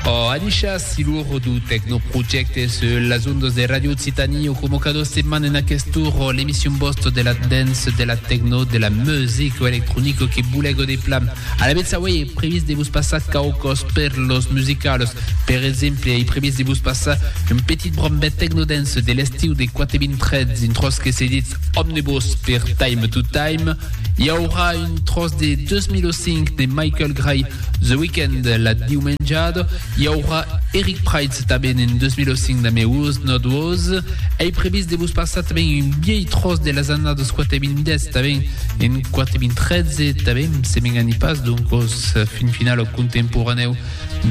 Oh, Anisha, silur du Tecnoprojecte sur las ondas de Radio Occitanie o como cada setmana en aquest tour l'emission bost de la dance, de la techno, de la musique o electronico que bulego de plan. A la beza, oui, e previst de vos passar caucos perlos musicalos. Per exemple, e previst de vos passar un petit brombet technodance de l'estiu de 423 in tros que se dit Omnibus per Time to Time. Hi aurà un tros de 2005 de Michael Gray The Weeknd la diumenjada i aurà Eric Prydz tanben en 2005 damb It Was Not Was. Ei previst de vos passar tanben un viei tròç de las annadas 4.010 tanben en 4.013 tanben, se m'enganhi pas, donc os fin final o contemporaneu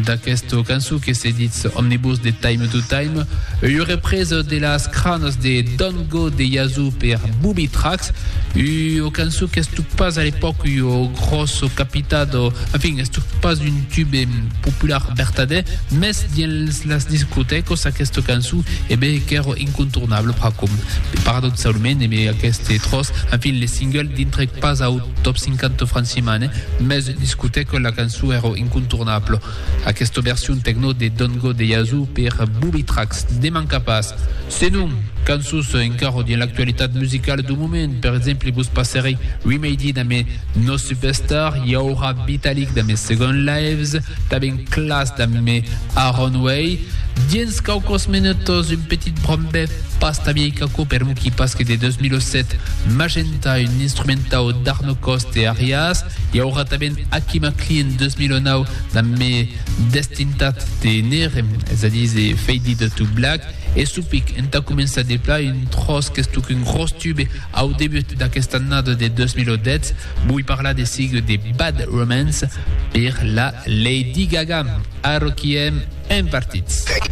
d'aquesta cançó que se ditz Omnibus de Time to Time, ua represa de las cranas de Don't Go de Yazoo per Booby Tracks, ua cançó qu'estut pas a l'epòca ua gròssa çò capitat o, en fin, es tot pas un tube popular vertadèr, mès dins las discotècas aquesta cançon e be qu'èra incontornable pr'acòm. Paradoxalment e be aqueste tròç, en fin, le single dintrèc pas au top 50 francimane, mès discotèca la cançon èra incontornable. Aquesta version techno de Don't Go de Yazoo per Booby Tracks ne manca pas. Senon, cançons encara dins l'actualitat musicala dau moment, per exemple vos passarè Remedy damb No Superstar, i aurà Vitalik damb Second Lives, tanben Klass damb Aaron Way. Dins quauques minutas un petit brombèth pas ta viei qu'aquò per Muki Paske de 2007, Magenta, un instrumentau d'Arno Cost e Arias, I aurà tanben Aki McLean 2009 damb Me Destintat de Nere, es a díser Faded to Black, e Supic entà començar de plan un tròç qu'es tot un gròs tube au debut d'aquesta annada de 2010, voi parlar de sigue de Bad Romance per la Lady Gaga. Arroquiem en partits.